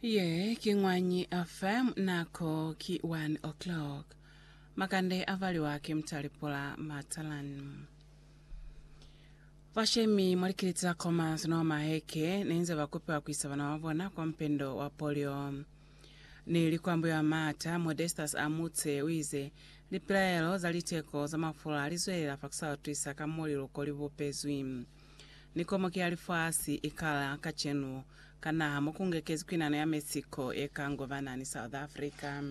Ye ki ñwañi FM nako ki 1 o'clock. Makande a valiwa ki Mtalipula Matalan. Vashemi mwa likiliti la Commerce no Maheke ne nze ba kupiwa ku isa bana ba bona kwa mpendo wa polio. Ni likwambo ya Mata, Modestus Amutse u ize, Lipilaelo za liteko za mafula li zwelela fa ku sa utwisa ka mo liluko li bupezwi. Ni komoki ya lifasi i kala kacenu ka naha mo ku ngekezi kwinano ya Mexico ye ka ngobana ni South Africa.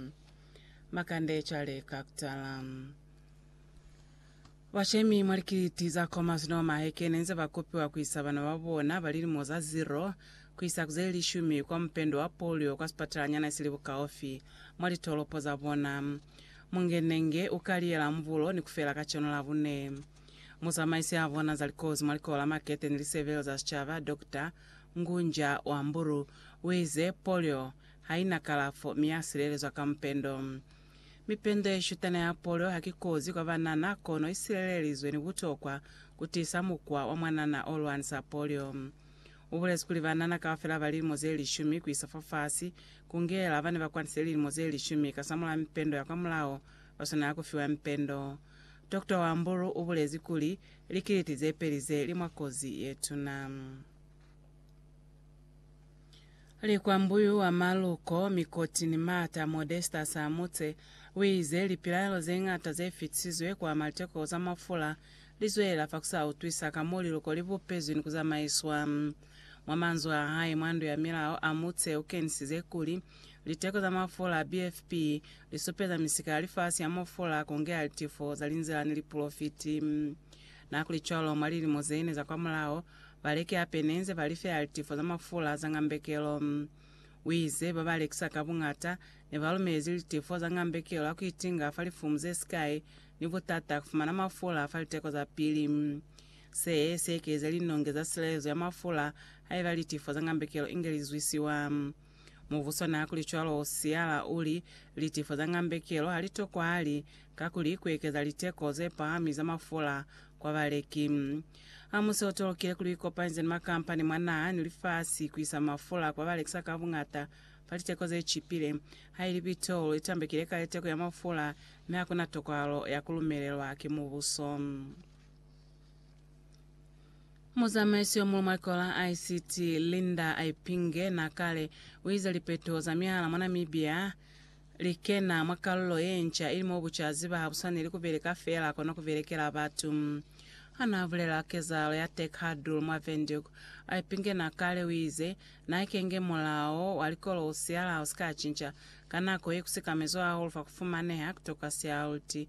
Makande cwale ka kutala. Bashemi mwa likiliti za Khomas no Maheke ne nze ba kopiwa ku isa bana ba bona ba lilimo za zero ku isa ku ze lishumi kwa mupendo wa polio kwa sipatalanyana si li bukaufi mwa litolopo za bona. Mungenenge u ka liyela mbulo ni ku fela kacenu Labune. Muzamaisi a bona za likozi mwa Likolo la Makete ni Lisebelo za Sicaba, Dokta Ngunja Wamburu, uize, Polio haina kalafo mi ya silelezwa ka mupendo. Mipendo yeshutana ya polio haki kozi kwa banana kono isilelelizwe ni butokwa kutiisa mukwa wa mwanana olwanisa polio. Ubulezi kuli banana kaufela ba lilimo zelishumi kuisa fafasi, kungela bane bakwanisile lilimo zelishumi kasamulaha mipendo ya kwamulaho, baswanela kufiwa mipendo. Dokota Wambulu u bulezi kuli, Likiliti ze peli ze li mwa kozi ye tuna. Likwambuyu wa maluko, mikoti ni maata Modesta Samutse u ize, Lipilaelo ze ñata ze fitisizwe kwa maliteko za mafula li zwelela fa ku sa utwisa ka mo liluko li bupezwi ni ku zamaiswa. Mwa manzwi a hae mwa ndu ya milao, Amutse u kenisize kuli, Liteko za mafula a BFP lisupeza misika ya lifasi ya mo fula kongea litifo za linzila ni lipolofiti. Nakulicwalo, mwa lilimo zeine za kwamulaho, baleki hape nenze ba lifeha litifo za mafula za ngambekelo. Uize, Baba lekisa ka buñata nebalumelezi litifo za ngambekelo ha kuitinga fa lifumu zesikai ni butata kufumana mafula fa liteko za pili. Se, siekelize linonge za silelezo ya mafula haiba litifo za ngambekelo inge lizwisiwa. Mubuso naa kuli cwalo u siyala u li, Litifo za ngambekelo ha li tokwahali, kakuli ku ekeza liteko ze pahami za mafula kwa baleki. Ha mu se u tolokile kuli u ikopanyeze ni makampani mwa naha ni lifasi ku isa mafula kwa balekisa ka buñata fa liteko ze cipile, haili pitrolo i tambekile kale teko ya mafula mi ha ku na tokwahalo ya ku lumelelwa ki mubuso. Muzamaisi yo muñwi mwa Likolo la ICT, Linda Aipinge na kale, u ize lipeteho za mihala mwa Namibia li kena mwa kalulo ye nca ili mo bucaziba ha bu swaneli ku beleka feela kono ku belekela batu. Ha naa bulela kezahalo ya Tech Huddle mwa Windhoek, Aipinge na kale, u ize, Na ikenge mulao wa likolo u siala ha u si ka cinca, ka nako ye ku sikamezwa hahulu fa ku fumaneha ku toka sialuti.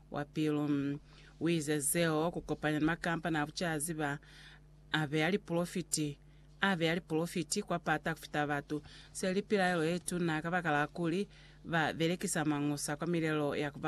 wa pilu. U ize zeo ku kopanya ni makampani a bucazi ba a beya lipolofiti, a beya lipolofiti kwa pata ku fita batu. Se li pilaelo ye tuna kabakala kuli ba belekisa mañusa kwa milelo ya ku ba